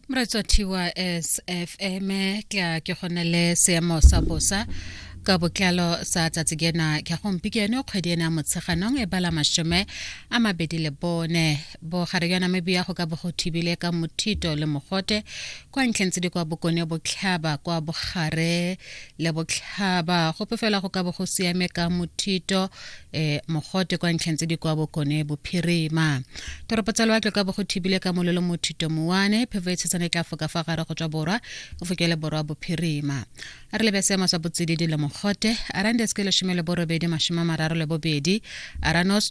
moratswa thiwa sfm ke a ke gone le seemo sa bosa ka botlalo sa tsatsi kena ke gompieno kgwedi ena motsheganong e bala mashome a mabedi le bone bogare jwa namibia go ka bo go thibile ka mothito le mogote kwa ntlheng tse di kwa bokone botlhaba kwa bogare le botlhaba gope fela go ka bo go siame ka mothito um mogote kwa ntlheng tse di kwa bokone bophirima toropo tsa loatle ka bo go thibile ka mololo mothito mowane phefo e tshetsana e tla foka fa gare go tswa borwa go fokele borwa bophirima a re lebe seemo sa botsididi le mogote arandes ke lesome le borobedi masome a mararo le bobedi aranos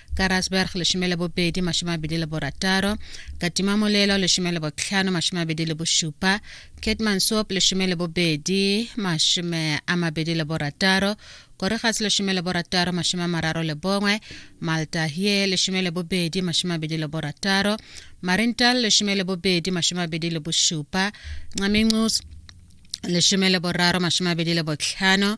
ka rasberg lesome le bobedi masome abedi le borataro katima molelo lesome le botlhano masome abedi le bošupa catman sop lesome le bobedi masome a mabedi le borataro koregas lesome le borataro masome a mararo le bongwe maltahie lesome le bobedi masome abedi le borataro marintal lesome le bobedi masome abedi le bošupa ncaminqus lesome le boraro masome abedi le botlhano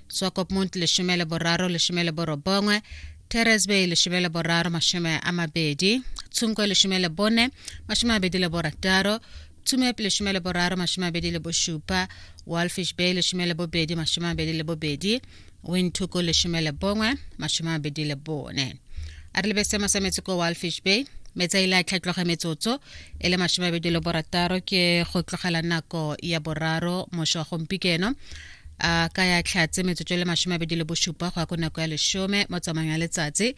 swakopmund leshome le boraro leshome le borobongwe teresbay leshome le boraro mashome a mabedi tshunko leshome le bone mashome a mabedi le borataro tsumepe leshome le boraro mashome a mabedi le bošupa walfish bay leshome le bobedi mashome a mabedi le bobedi windtuko leshome le bongwe mashome a mabedi le bone a re lebe seemo sa metsi ko walfish bay metsi a ile a tlhatloga metsotso e le masome abedi le borataro ke go tlogela nako ya boraro moso wa gompikeno a ka ya tlhatse metsotso e le masome a bedi le bosupa go ya ko nako ya lesome mo tsamayong ya letsatsi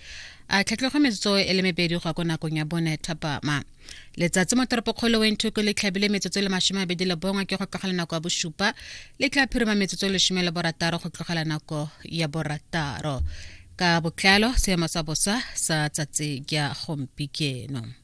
a tlhatlhogo metsotso e le mebedi go ya ko nakong ya bone thapama letsatsi mo toropokgolo wenthoko le tlhabile metsotso e le masome a bedi le bongwe ke go tlogela nako ya bosupa le tla phirima metsotso e lesome le borataro go tlogela nako ya borataro ka botlalo seemo sa bosa sa tsatsi ya gompikeno